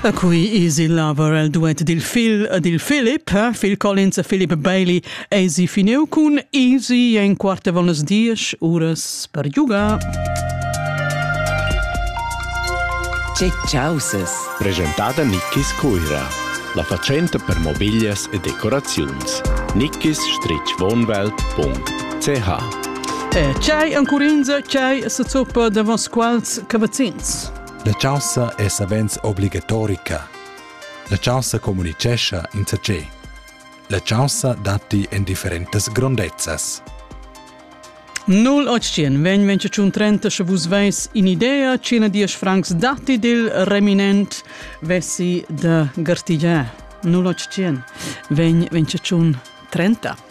A cui is il laver el duet dil fil dil Philip, Phil Collins e Philip Bailey eisi finiu cun easy en quarta von las diesch uras per giugar. Che causes. Presentada Nickis Cuira. La fatschenta per mobiglias e decoraziuns. nickis-wohnwelt.ch E c'hai ancurinza c'hai sa zoppa davos quals cavazzin. La chaussa è savens obligatorica. La chaussa communitgescha insatge. La chaussa datti en differentas grondezzas. 0800 vegn trenta sche vus veis un'idea cina dies francs datti dil reminent vessi da gartigiar. 0800 vegn 30.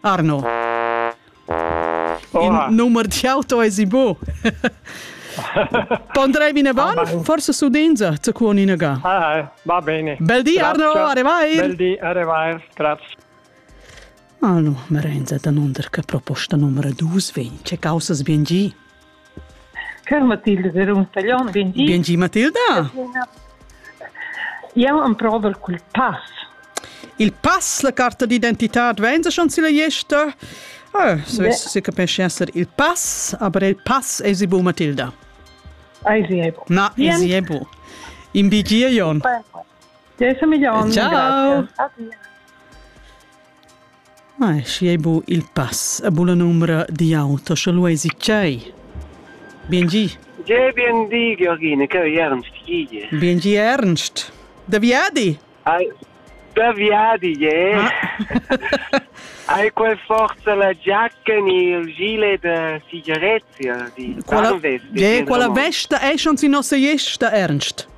Arno. In numer d'auto es i bu. Pondrei bine ban, forse su dinza, zu con inaga. Ah, va bene. Bel di Arno, arrivai. Bel di, arrivai, grazie. Allo, merenza da nunder che proposta numero 2 vegn, che causas bien gi? Cur Matilda era un taglion vegn dit. Vegn gi Matilda? Jau emprovel cul pass. Il pass, la carta d'identitad, vegn se schon silla gesta? Ah, so se capisce essere il pass, aber il pass è si bu Matilda. Ai si è bu. Na, si è bu. In bigie Jon. Ciao. Adieu. Ma schi ei bu il pass a buna numra di auto, sche lu eisi tgei? Bien gi. Ge bien di, Georgine, che ei ernst gide. Bien gi Ernst. Da viadi? Ai, da viadi, je. Ah. Hai quel forza la giacca ni il gile da sigaretta di. Quella, je, quella vesta è schon si nostra esta Ernst.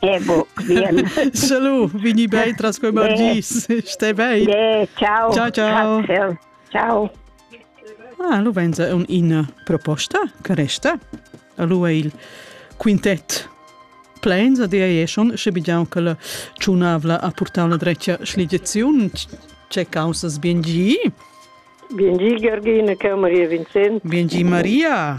Ego, bien. Salut, vini bei tras quei margis. Stai bei. Yeah, ciao. Ciao, ciao. Grazie. Ciao. Ah, lu venza un ina proposta che resta. Lu è il quintet plans a dia e schon sche bigiau che la ciunavla a portau la drecia schligiaziun c'è causas bien gi. Bien gi Georgina, che Maria Vincent. Bien gi Maria.